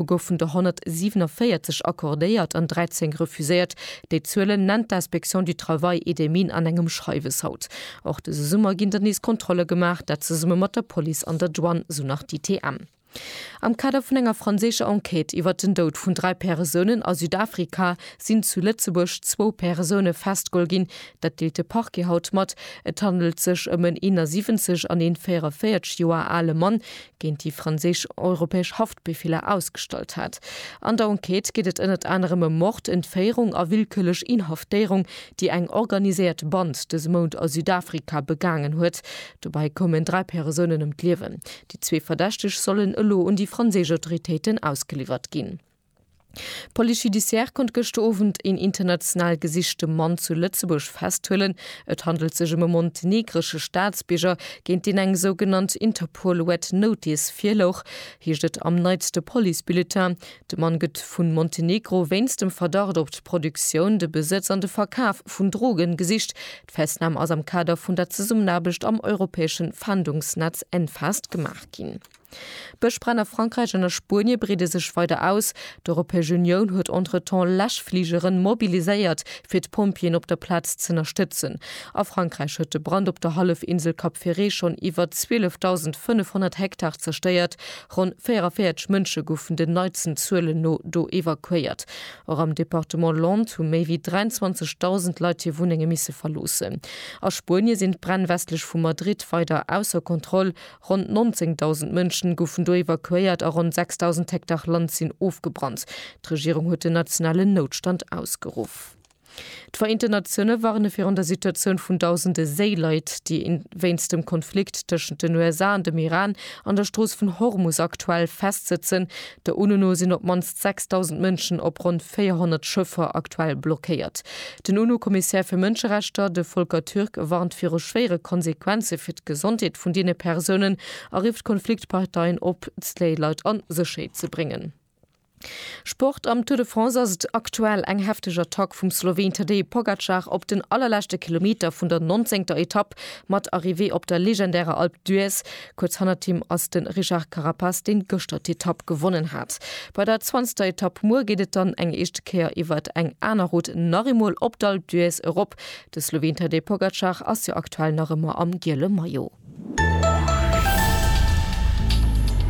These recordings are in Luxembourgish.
U goufen der 147 accordéiert an 13 refuséiert. Déi Zuelen nennt d'Inspection du Travail et des Mines an engem Schreiwes haut. Och dëse Summer ginn der nees Kontrolle gemaach, dat zesumme mat der Police an der Douane, sou nach d'ITM. Am Kader vun enger franséischer Enquête iwwert den Doud vun dräi Peresounen a Südafrika sinn zu Lëtzebuerg zwou Peresoune festgeholl ginn. Dat deelt de Parquet haut mat. Et handelt sech ëm en 71 an een 44 Joer ale Mann. géint déi franséisch europäesch Haftbefeeler ausgestallt hat. An der Enquête geet et ënnert anerem ëm Mord, Entféierung a willkürlech Inhaftéierung, déi eng organiséiert Band dëse Mount a Südafrika begaangen huet. Dobäi koumen dräi Persounen ëm d'Liewen. Déi zwee Verdächteg sollen elo un déi franséisch Autoritéiten ausgeliwwert ginn. D'Police judiciaire konnt gëschter Owend een international gesichte Mann zu Lëtzebuerg festhuelen. Et handelt sech ëm e montenegresche Staatsbierger, géint deen eng sougenannt Interpol Red Notice virlouch, heescht et am neitste Police-Bulletin. De Mann gëtt vu Montenegro wéinst dem Verdacht op d'Produktioun, de Besëtz an de Verkaf vun Drogen gesicht. D'Festnam ass am Kader vun der Zesummenaarbecht am europäesche Fahndungsnetz Enfast gemaach ginn. D'Bëschbränn a Frankräich an a Spuenie breede sech weider aus. D'Europäesch Unioun huet entretemps Läschfligere mobiliséiert, fir d'Pompjeeën op der Plaz z'ënnerstëtzen. A Frankräich huet de Brand op der Hallefinsel Cap Ferret schonn iwwer 12.500 Hektar zerstéiert. Ronn 44 Mënsche goufen den neitsten Zuelen no do evakuéiert. Och am Departement Landes hu méi wéi 23.000 Leit hir Wunnenge misse verloossen. A Spuenie sinn d'Bränn westlech vu Madrid weider ausser Kontroll. Ronn 19.000 Mënschen goufen do evakuéiert a ronn 6.000 Hektar Land sinn ofgebrannt. D'Regierung huet den nationalen Noutstand ausgeruff. D'Vereenten Natioune warne virun der Situatioun vun dausende Séileit, déi wéinst dem Konflikt tëschent den USA an dem Iran an der Strooss vun Hormus aktuell festsëtzen, Der UNO no sinn op d'mannst 6.000 Mënschen op ronn 400 Schëffer aktuell blockéiert. Den UNO-Kommissär fir Mënscherechter, de Volker Türk, warnt viru schwéiere Konsequenze fir d'Gesondheet vun deene Persounen a rifft d'Konfliktparteien op, déi Leit a Sécherheet ze bréngen. Sport, Am Tour de France ass et aktuell eng hefteg Attack vum Sloween Tadej Pogacar op den allerleschte Kilometer vun der nonzéngter Etapp mat Arrivée op der legendärer Alpe d'Huez. Kuerz hannert him ass de Richard Carapaz, deen gëschter d'Etapp gewonnen hat. Bei der zwanzegter Etapp muer geet et dann eng éischte Kéier iwwert eng aner Rout nach eemol op d'Alpe d'Huez erop. De Sloween Tadej Pogacar ass jo aktuell nach ëmmer am giele Maillot.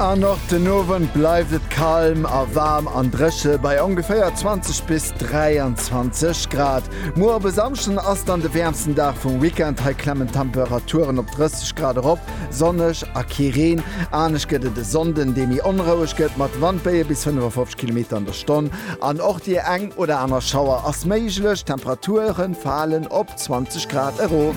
An och den Owend bleift et kalm a waarm an dréche bei ongeféier 20 bis 23 Grad. Muer op e Samschden ass dann de wäermsten Dag vum Weekend. Hei klemmen d'Temperaturen op 30 Grad erop. Sonneg a kee Reen. Anescht gëtt et e Sonnden, dee méi onroueg gëtt, mat Wandbéie bis 55 Kilometer an der Stonn an och déi eng oder aner Schauer ass méiglech. D'Temperature falen op 20 Grad erof.